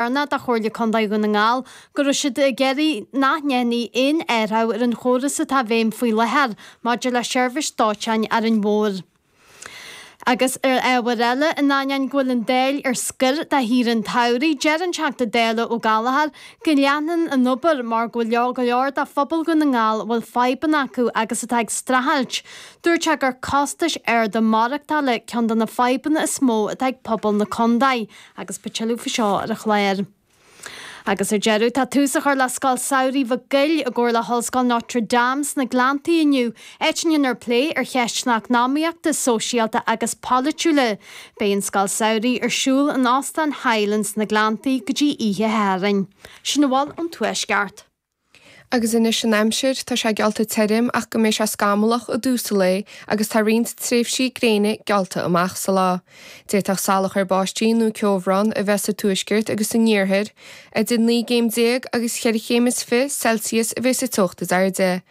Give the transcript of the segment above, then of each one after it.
d'iarr de Chomhairle Contae Dhún na nGall go raibh siad ag iarraidh nach ndéanfaí aon athrú ar an chóras atá i bhfeidhm faoi láthair maidir le seirbhís dóiteáin ar an bhóthar agus ar ábhair eile. In ainneoin go bhfuil an Dáil ar scor do shaoire an tsamhraidh, deir an Teachta Dála Ó Gallchóir go leanfaidh an obair mar go bhfuil go leor de phobal Dhún na nGall a bhfuil fadhbanna acu agus atá ag streachailt. Dúirt sé gur costais arda maireachtála ceann de na fadhbanna is mó atá ag pobal na contae agus beidh tuilleadh faoi seo ar an chlár. Agus ar deireadh, tá tús á chur le Scoil Samhraidh Mhic Gaill i gcomhar le hOllscoil Notre Dame sna Gleanntaí inniu, áit a ndéanfar plé ar cheisteanna eacnamaíochta, sóisialta agus polaitiúla. Beidh an Scoil Samhraidh ar siúl in Óstán Highland sna Gleanntaí go dtí oíche Shathairn. Sin a bhfuil ón Tuaisceart. Agus anois an aimsir, tá sé geallta tirim ach go mbeidh sé scamallach i dtús an lae agus tá roinnt tréimhsí gréine geallta amach sa lá. D'fhéadfadh salachar báistí nó ceobhrán a bheith sa tuaisceart agus san iarthar. Idir naoi gcéim déag agus cheithre chéim is fiche Celsius a bheidh sa teocht is airde.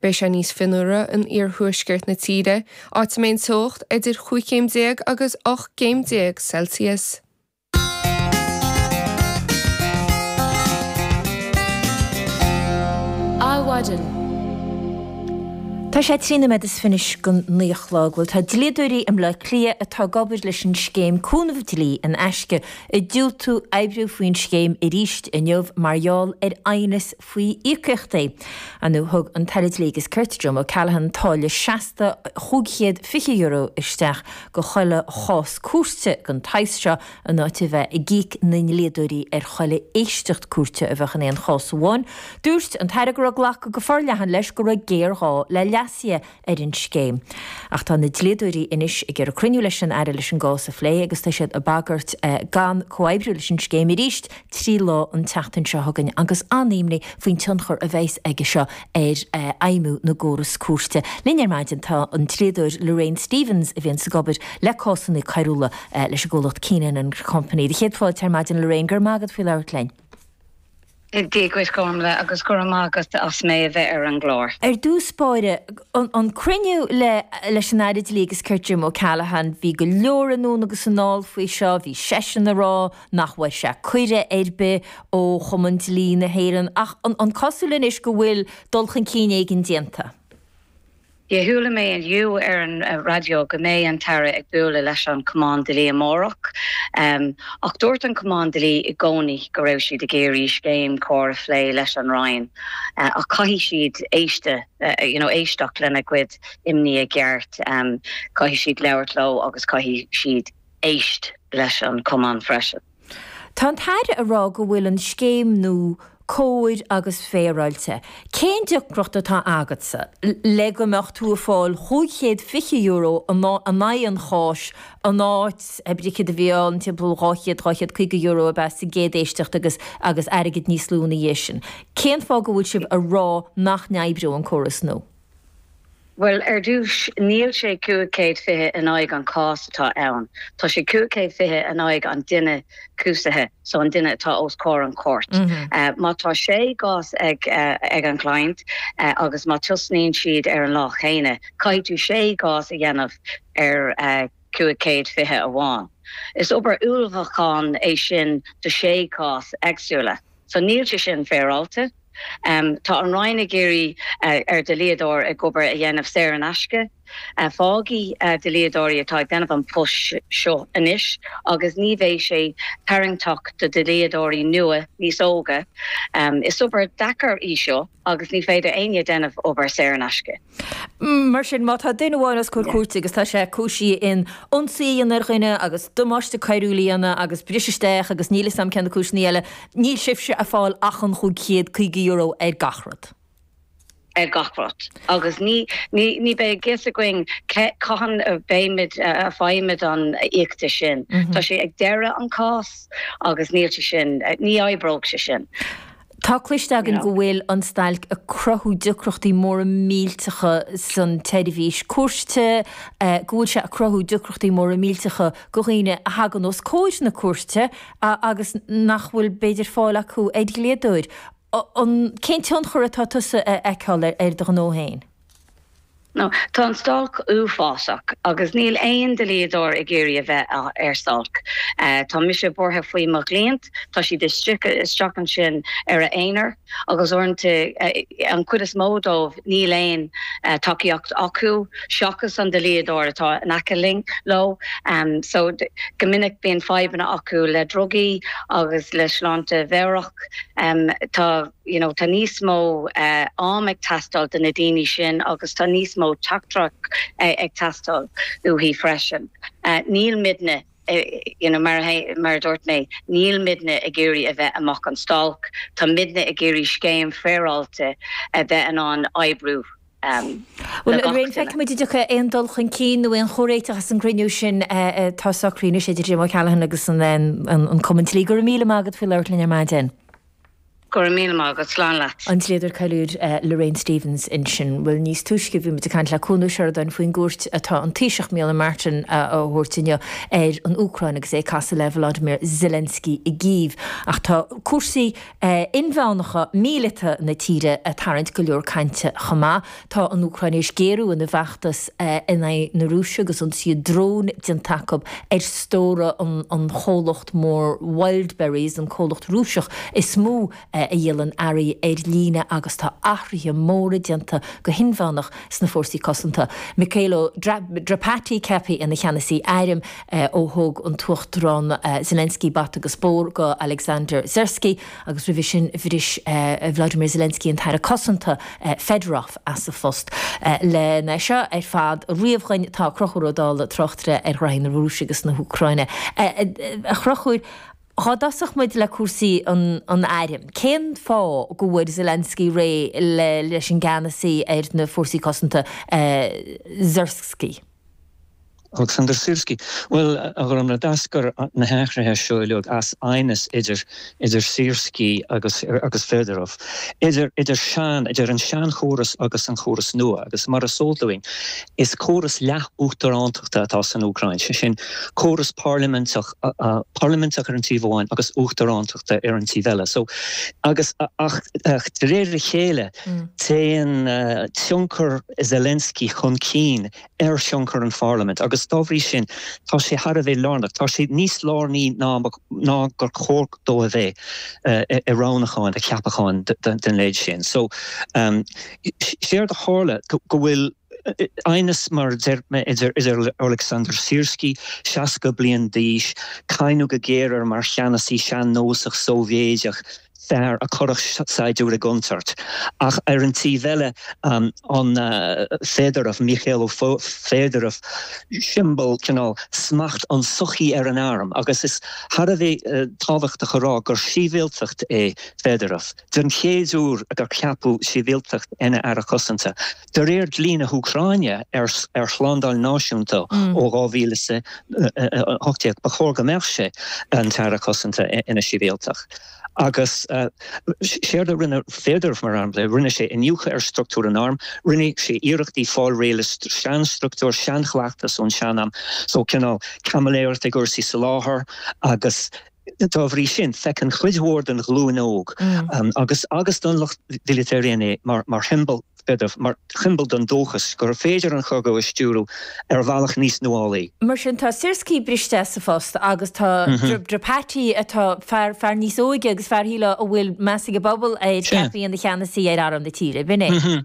Beidh sé níos fionnuaire in iarthuaisceart na tíre, áit a mbeidh an teocht idir chúig chéim déag agus ocht gcéim déag Celsius. Adhmhaidin. Tá sé trí nóiméad is fiche don naoi a chlog. Bhuel, tá dlíodóirí i mBleá Cliath atá ag obair leis an scéim cúnamh dlí in aisce ag diúltú oibriú faoin scéim arís inniu mar gheall ar aighneas faoi íocaíochtaí. Anuraidh thug an tAire Dlí agus Cirt, Jim O'Callaghan, táille seasta €520 isteach do chuile chás cúirte den tsaghas seo in áit a bheith ag íoc na ndlíodóirí ar chuile éisteacht cúirte a bheadh in aon chás amháin. Dúirt an tAire go raibh glactha go forleathan leis go raibh géarghá le leasuithe ar an scéim. Ach tá na dlíodóirí anois ag iarraidh cruinniú leis an Aire leis an gcás a phlé agus tá siad ag bagairt gan comhoibriú leis an scéim arís trí lá an tseachtain seo chugainn agus an-imní faoin tionchar a bheas aige seo ar fheidhmiú an chórais cúirte. Linn ar maidin tá an dlíodóir Lorraine Stephens a bhíonns ag obair le cásanna coiriúla leis an gcomhlacht Keenan and Company. Tá céad fáilte ar maidin Lorraine, go raibh maith agat faoi labhairt linn. Dia dhuit a Ghormfhlaith agus go raibh maith agat as mé a bheith ar an gclár. Ar dtús báire, an cruinniú le leis an Aire Dlí agus Cirt Jim O'Callaghan, bhí go leor anonn agus anall faoi seo, bhí seisean a rá nach bhfuair sé cuireadh ar bith ó Chumann Dlí na hÉireann ach an cosúil anois go bhfuil dul chun cinn éigin déanta? Chuala mé inniu ar an raidió go mbeidh an tAire ag bualadh leis an Chumann Dlí amárach ach dúirt an Cumann Dlí i gcónaí go raibh siad ag iarraidh scéim chóir a phlé leis an Roinn ach caithfidh siad éisteacht lena gcuid imní i gceart, caithfidh siad labhairt leo agus caithfidh siad éist leis an Chumann freisin. Tá an tAire ag rá go bhfuil an scéim nua cóir agus féaráilte. Cén deacracht atá agatsa le go mbeadh tú ag fáil chúig chéad fiche euro in aghaidh an cháis in áit, ab é céard a bhí ann, timpeall dhá chéad, dhá chéad caoga euro ab ea sa gcéad éisteacht agus, agus airgead níos lú ina dhiaidh sin. Cén fáth go bhfuil sibh ag rá nach n-oibreodh an córas nua? Bhuel, ar dtúis, níl sé cúig chéad fiche in aghaidh an chás atá ann, tá sé cúig chéad fiche in aghaidh an duine cúisithe, so an duine atá os comhair an chúirt. Má tá sé gcás ag an gcliant agus má tosnaíonn siad ar an lá chéanna, caithfidh tú sé gcás a dhéanamh ar cúig chéad fiche amháin. Is obair ullmhúcháin é sin do sé chás eagsúla, so níl sé sin féaráilte. Tá an Roinn ag iarraidh ar dlíodóirí obair a dhéanamh saor in aisce. Fágfaidh dlíodóirí atá ag déanamh an post seo anois agus ní bheidh sé tarraingteach do dhlíodóirí nua níos óga. Is obair deacair í seo agus ní féidir éinne déanamh obair saor in aisce. Mar sin, má tá duine amháin os comhair cúirte agus tá sé cúisithe in ionsaí a dhéanamh ar dhuine agus damáiste coiriúil a dhéanamh agus briseadh isteach agus níl 'fhios a'm cén cúiseanna eile, níl sibhse a' fáil ach an chúig chéad caoga euro ar gach rud. Ar gach rud. Agus ní, ní, ní beidh a fhios againn cé, cathain a bheimid, a bhfaighimid an íocaíocht sin. Tá sé ag deireadh an cás agus níl sé sin, ní oibreoidh sé sin. Tá cloiste againn go bhfuil an stailc ag cruthú deacrachtaí móra millteacha san tseirbhís cúirte, go bhfuil sé ag cruthú deacrachtaí móra millteacha do dhaoine a thagann os comhair na cúirte agus nach bhfuil b'fhéidir fáil acu ar dhlíodóir. Cén tionchar atá tusa a fheiceáil ar do ghnó féin? Ó, tá an stailc uafásach agus níl aon dlíodóir ag iarraidh a bheith ar stailc. Tá mise buartha faoi mo chliant, tá siad isteach ansin ar a aonar agus uaireanta, an chuid is mó dóibh, níl aon tacaíocht acu seachas an dlíodóir atá in aice linn, leo. Só, go minic bíonn fadhbanna acu le drugaí agus le sláinte mheabhrach. Tá. you know tá níos mó am ag teastáil de na daoine sin agus tá níos mó tacaíocht ag teastáil uathaidh freisin. Níl muidne you know mar mar a dúirt mé níl muidne ag iarraidh a bheith amach ar stailc, tá muidne ag iarraidh scéim féaráilte a bheith in ann oibriú do gach duine. Bhuel, feicfimid an dtiocfaidh aon dul chun cinn nó aon chomhréiteach as an gcruinniú sin atá socraithe anois idir Jim O'Callaghan agus an Cumann Dlí. Go raibh míle maith agat faoi labhairt linn ar maidin. Go raibh míle maith agat, slán leat. An dlíodóir coiriúil Lorraine Stephens ansin. Bhuel, níos túisce bhí muid ag caint le Cuan Ó Seireadáin faoin gcuairt atá an Taoiseach Micheál Martin a thabhairt inniu ar an Úcráin agus é ag casadh le Volodymyr Zelensky i gCív. Ach tá cúrsaí inmheánacha, míleata na tíre ag tarraingt go leor cainte chomh maith. Tá an Úcráin tar éis géarú ina bhfeachtas in aghaidh na Rúise agus ionsaí dróin déanta acu ar stórtha an chomhlacht mór Wildberries, an comhlacht Rúiseach is mó a dhíolann earraí ar líne agus tá athruithe móra déanta go hinmheánach sna fórsaí cosanta. Mykhailo Drapatyi ceaptha ina cheannasaí airm ó thug an tUachtarán Zelensky bata agus bóthar do Alexander Syrskyi. agus roimhe sin bhris Vladimir Zelensky an tAire Cosanta Fedorov as a phost. Len é seo ar fad a ríomh dhúinn tá Conchúr Ó Dálaigh tráchtaire ar ghraithí na Rúise agus na hÚcráine. A Chonchúir, dhá dtosódh muid le cúrsaí an airm, cén fáth go bhfuair Zelensky réidh leis an gceannasaí ar na fórsaí cosanta Syrskyi? Oleksandr Syrskyi, Bhuel, a Ghormlaith, d'eascair na hathruithe seo uilig as aighneas idir Syrskyi agus Fedorov, idir an seanchóras agus an córas nua, agus mar is eol dúinn, is córas leath-uachtarántachta atá san Úcráin, sé sin, córas parlaiminteach ar an taobh amháin agus uachtarántachta ar an taobh eile. So, agus, ach, de réir a chéile, Téann tionchar Zelensky chun cinn ar thionchar an pharlaimint agus dá bhrí sin tá sé thar a bheith lárnach, tá sé níos lárnaí ná gur chóir dó a bheith, i roghnacháin a cheapacháin den leithéid sin. So, séard a tharla go bhfuil. aighneas, mar a deir mé, idir Oleksandr Syrskyi, 60 bliain d'aois, cáineadh go géar air mar cheannasaí sean-nósach Sóivéideach, fear a chuirfeadh saighdiúir i gcontúirt, ach ar an taobh eile, an Fedorov, Mykhailo Fedorov, siombal, cineál, smacht an tsochaí ar an arm, agus is thar a bheith tábhachtach a rá gur shibhialtach é Fedorov, den chéad uair gur ceapadh sibhialtach ina Aire Cosanta. De réir dlí na hÚcráine ar shlándáil náisiúnta ó 2018, ba chóir go mbeadh sé, an tAire Cosanta, ina shibhialtach. Agus séard a rinne Fedorov, mar shampla, rinne sé iniúchadh ar struchtúr an airm, rinne sé iarrachtaí fáil réidh le seanstruchtúir, seanchleachtas ón sean-am, so cineál caimiléireacht i gcúrsaí soláthair agus. Dá bhrí sin, feiceann cuid mhór den ghlúin óg agus agus den lucht míleata araon é mar shiombail, b'fhéidir, mar shiombail den dóchas gur féidir an cogadh a stiúradh ar bhealach níos nuálaí. Mar sin, tá Syrskyi briste as a phost agus tá Drapatyi, atá, fear, fear níos óige agus fear, shílfeá, a bhfuil meas ag an bpobal air, ceaptha ina cheannasaí ar arm na tíre. B'in é.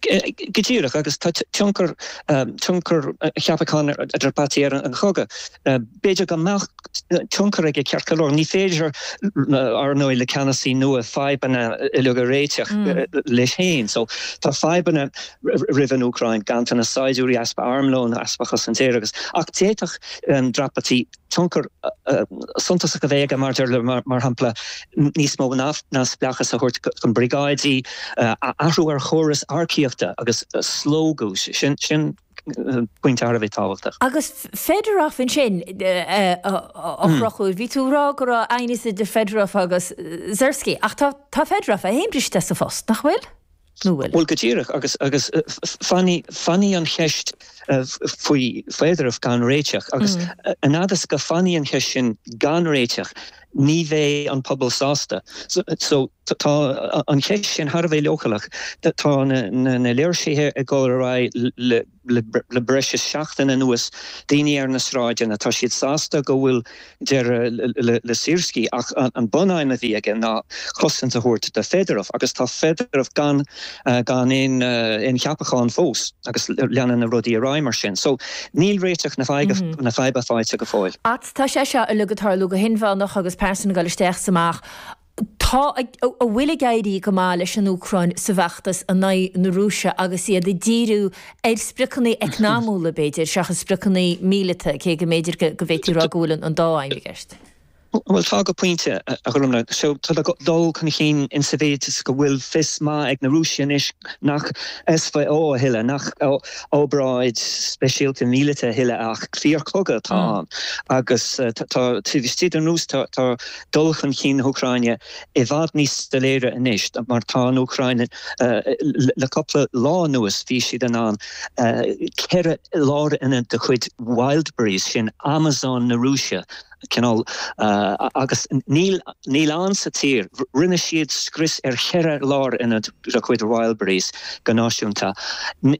go díreach agus tá tionchar tionchar cheapachán Drapatyi ar an chogadh. B'fhéidir go mbeadh tionchar aige ceart go leor. Ní féidir, ar ndóigh, le ceannasaí nua fadhbanna uilig a réiteach leis féin. So, tá fadhbanna roimh an Úcráin, ganntanas saighdiúirí, easpa armlóin, easpa cosaint aeir agus, ach d'fhéadfadh Drapatyi Tionchar suntasach a bheith aige, maidir le, mar shampla, níos mó neamhspleáchais a thabhairt chun briogáidí, athrú ar chóras earcaíochta agus slógadh, sin pointe thar a bheith tábhachtach. Agus Fedorov ansin a throchú, bhí tú ag rá go raibh aighneas idir Fedorov agus Syrskyi, ach tá Fedorov féin briste as a phost, nach bhfuil? Bhuel, go díreach, agus fanfaidh an cheist faoi Fedorov gan réiteach, agus an fhad is go fanfaidh an cheist sin gan réiteach, ní bheidh an pobal sásta. So, tá an cheist sin thar a bheith leochaileach, tá na léirsithe ag dul ar aghaidh le Le breis is seachtain anuas, daoine ar na sráideanna, tá siad sásta go bhfuil deireadh le Syrskyi ach an bunaidhm a bhí aige ná cosaint a thabhairt do Fedorov agus tá Fedorov gan aon cheapachán fós agus leanann na rudaí ar aghaidh mar sin. So, níl réiteach na faidhbe faighte go fóill. Ach tá sé seo uilig ag tarlú go hinmheánach agus pearsain ag dul isteach is amach. Tá, an bhfuil ag éirí go maith leis an Úcráin sa bhfeachtas in aghaidh na Rúise agus iad ag díriú ar spriocanna eacnamaíocha, b'fhéidir, seachas spriocanna míleata, cé go mb'fhéidir go bhféadfaí a rá go bhfuil an dá aidhm i gceist. Bhuel, tá go pointe, a Dhorna. Tá dul chun cinn in sa mhéid is go bhfuil fios maith ag na Rúisigh anois nach SVO a thuilleadh, nach oibríocht speisialta míleata a thuilleadh, ach fíorchogadh atá ann. Agus tá, taobh istigh den Rúis, tá, dul chun cinn na hÚcráine i bhfad níos soiléire anois mar tá an Úcráin, le cúpla lá anuas bhí siad in ann ceithre lárionad de chuid Wildberries, sin Amazon na Rúise cineál, agus níl ann sa tír, rinne siad scrios ar cheithre lárionad de chuid Wildberries go náisiúnta.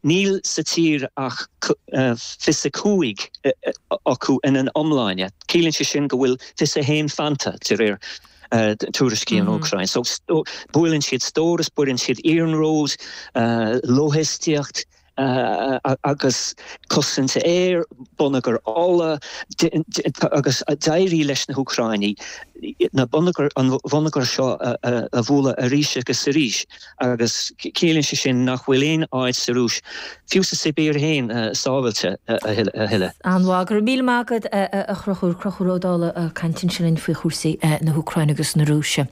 Níl sa tír ach fiche's a cúig acu ina n-iomláine. Ciallaíonn sé sin go bhfuil fíorbheagán fanta, de réir tuairiscí na hÚcráine. So, buaileann siad stórais, buaileann siad iarnróid, lóihistíocht agus cosaint aeir, bonneagar ola agus d'éirigh leis na hÚcráinigh na bonneagair, an bhonneagar seo a bhualadh arís agus arís. Agus ciallaíonn sé sin nach bhfuil aon áit sa Rúis, fiú sa tSibéir féin, sábhailte a thuilleadh. An-mhaith. Go raibh míle maith agat, a Chonchúir, Conchúr Ó Dálaigh ag caint ansin linn faoi chúrsaí na hÚcráine agus na Rúise.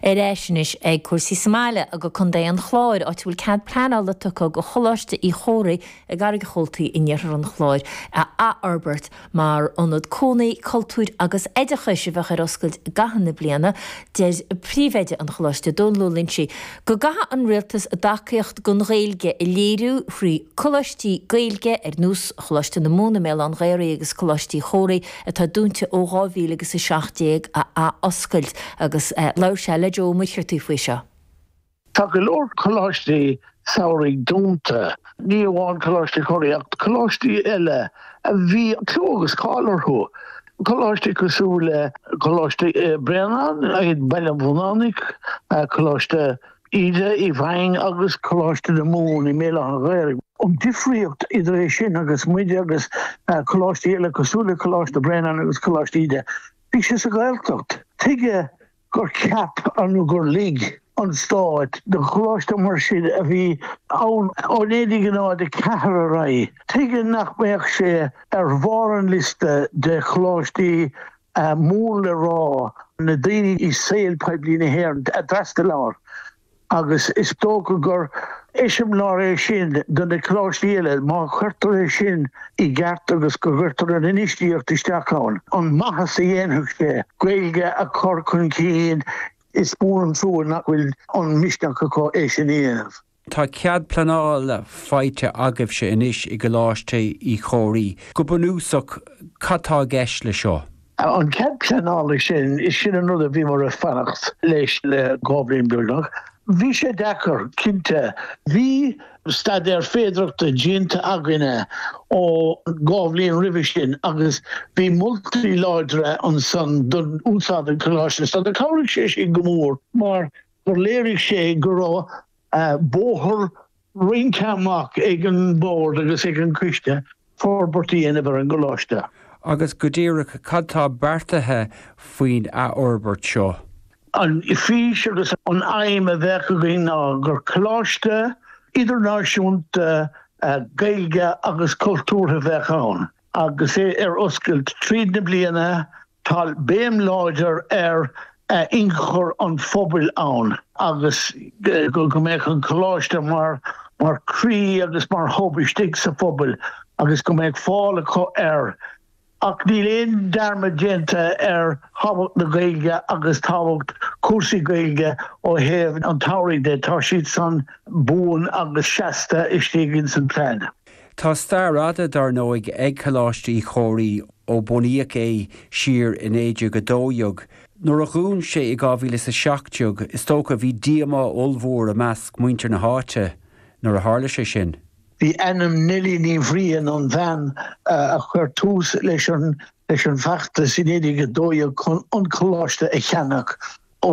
Ar ais anois ag cúrsaí sa mbaile, go Contae an Chláir, áit a bhfuil cead pleanála tugtha do Choláiste Uí Chomhraí i gCarraig an Chabhaltaigh in iarthar an Chláir a athfhorbairt, Mar ionad cónaí, cultúir agus oideachais a bheadh ar oscailt i gcaitheamh na bliana, deir Príomhoide an Choláiste, Domhnall Ó Loingsigh, go gcaithfidh an Rialtas a dtacaíocht don Ghaeilge a léiriú thrí coláistí Gaeilge ar nós Choláiste na Mumhan i mBéal Átha an Ghaorthaidh agus Coláiste Uí Chomhraí atá dúnta ó 2000 agus 17 a athoscailt agus labhair sé le Joe Ó Muircheartaigh faoi seo. Tá go leor coláistí samhraidh dúnta, ní amháin Coláiste Uí Chomhraí ach coláistí eile a bhí clú agus cáil orthu, coláistí cosúil le Coláiste Bhréanainn i mBaile an Bhuinneánaigh, Coláiste Íde i bhFaing agus Coláiste na Mumhan i mBéal Átha an Ghaorthaidh. An difríocht idir é sin agus muide agus coláistí eile cosúil le Coláiste Bhréanainn agus Coláiste Íde, bhí sé sa Ghaeltacht. Tuige gur cheap an nó gur lig an Stát do choláiste mar sin a bhí ann ó 1904 ar aghaidh. Tuige nach mbeadh sé ar bharr an liosta de choláistí mór le rá, na daoine i saol poiblí na hÉireann a d'fhreastail ann? agus is dócha gur eiseamláir é sin do na coláistí eile, má chuirtear é sin i gceart agus go gcuirtear an infheistíocht isteach ann, an maitheas a dhéanfadh sé an Ghaeilge a chur chun cinn, is mór an trua nach bhfuil an misneach acu é sin a dhéanamh. Tá cead pleanála faighte agaibhse anois i gColáiste Uí Chomhraí. Go bunúsach, cad tá i gceist le seo? An cead pleanála sin, is sin an rud a bhíomar ag fanacht leis le dhá bhliain beagnach. Bhí sé deacair, cinnte. Bhí staidéar féidireachta déanta againne ó dhá bhliain roimhe sin agus bhí moltaí láidre ansan do úsáid an choláiste so cabhraigh sé sin go mór mar gur léirigh sé go raibh bóthar roinnte amach ag an Bhord agus ag an gCoiste forbairt a dhéanamh ar an gColáiste. Agus go díreach cad tá beartaithe faoin athfhorbairt seo? An fís agus an aidhm a bheadh againn ná gur Coláiste idirnáisiúnta Gaeilge agus cultúrtha a bheadh ann agus é ar oscailt tríd na bliana Tá béim láidir ar inchur an phobail ann agus go mbeadh an Coláiste mar chroí agus mar hub istigh sa phobal agus go mbeadh fáil acu air. Ach níl aon dearmad déanta ar thábhacht na Gaeilge agus tábhacht cúrsaí Gaeilge ó thaobh an tsamhraidh dhe, tá siad san buan agus seasta istigh ins an plean. Tá stair fhada, dár ndóigh, ag Coláiste Uí Chomhraí. ó bunaíodh é siar i 1912. Nuair a dhún sé i 2017, is dócha bhí díomá ollmhór i measc muintir na háite nuair a tharla sé sin. Bhí ainm Neilí Ní Bhriain, an bhean a chuir tús leis an bhfeachtas i 1912 chun an coláiste a cheannach ó